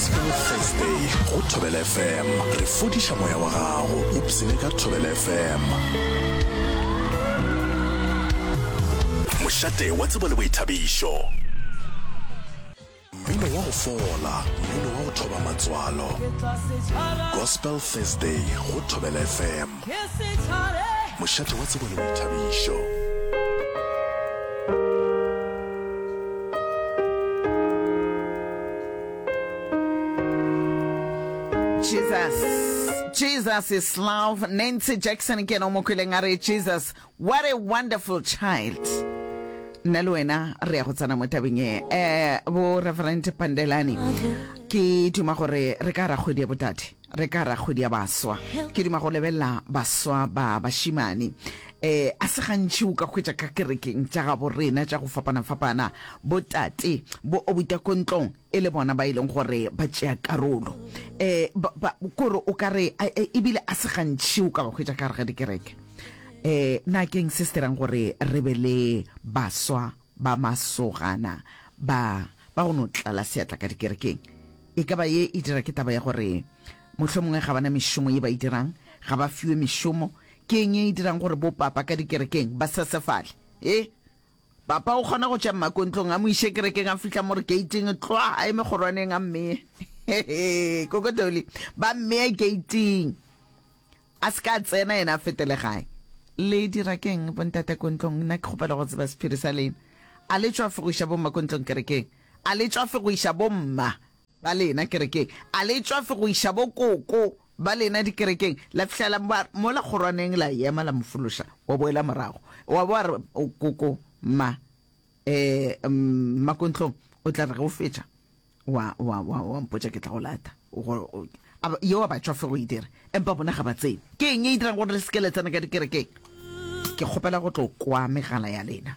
Sport Thursday go Thobela FM. Re fodiša moya wa gago. Ipsene ka Thobela FM. Mošate wa tsebo le boithabišo. Mmino wa go fola, mmino wa go thoba matswalo. Gospel Thursday go Thobela FM. Mošate wa tsebo le boithabišo. Jesus. Jesus is love. Nancy Jackson ke no mokweleng a re Jesus. What a wonderful child. nna le wena re ya go tsena mo tabeng e um bo reverend pandelani ke duma gore re ka ra kgwedi ya botate Re ka ra kgwedi ya baswa. Ke duma go lebelela baswa ba bašimane. E, a se gantši o ka hwetša ka kerekeng tša gabo rena tša go fapana-fapana botate bo obuta ko ntlong e le bona ba e leng gore ba tšea karolo. E, ba, ba, kore o ka re, a, e, ebile a se gantši o ka ba hwetša ka gare ga dikereke. E, na keng se se dirang gore re be le baswa Ba masogana ba ba go no tlala seatla ka dikerekeng. E ka ba ye e dira ke taba ya gore mohlomongwe ga ba na mešomo ye ba e dirang, ga ba fiwe mešomo. Ke eng ye e dirang gore bopapa ka dikerekeng ba sesefale? He, papa o kgona go tšea mmako ntlong a mo iše kerekeng, a fihla mo re gate-ing, tlwa a eme kgorwaneng a mmeye. He-he, Koko Dolly, ba mmeya gate-ing. A se ka a tsena yena a fete legae. Le dira keng bontate ko ntlong? Nna ke kgopela go tseba sephiri sa lena. A le tšwa fegoiša bomma ko ntlong kerekeng? A le tšwa fegoiša bomma ba lena kerekeng? A le tšwa fegoiša bokoko ba lena dikerekeng? La fihlela mola kgorwaneng la ema la mo fološa, wa boela morago wa bo wa re, Koko, mma, ee, mma ko ntlong, o tla re ge o fetša. wa wa wa wa mpotša ke tla go lata yo wa batšwa fe go e dira empa bona ga ba tsebe ke eng e dirang gore le seke le tsena ka dikerekeng ke kgopela go tlo kwa megala ya lena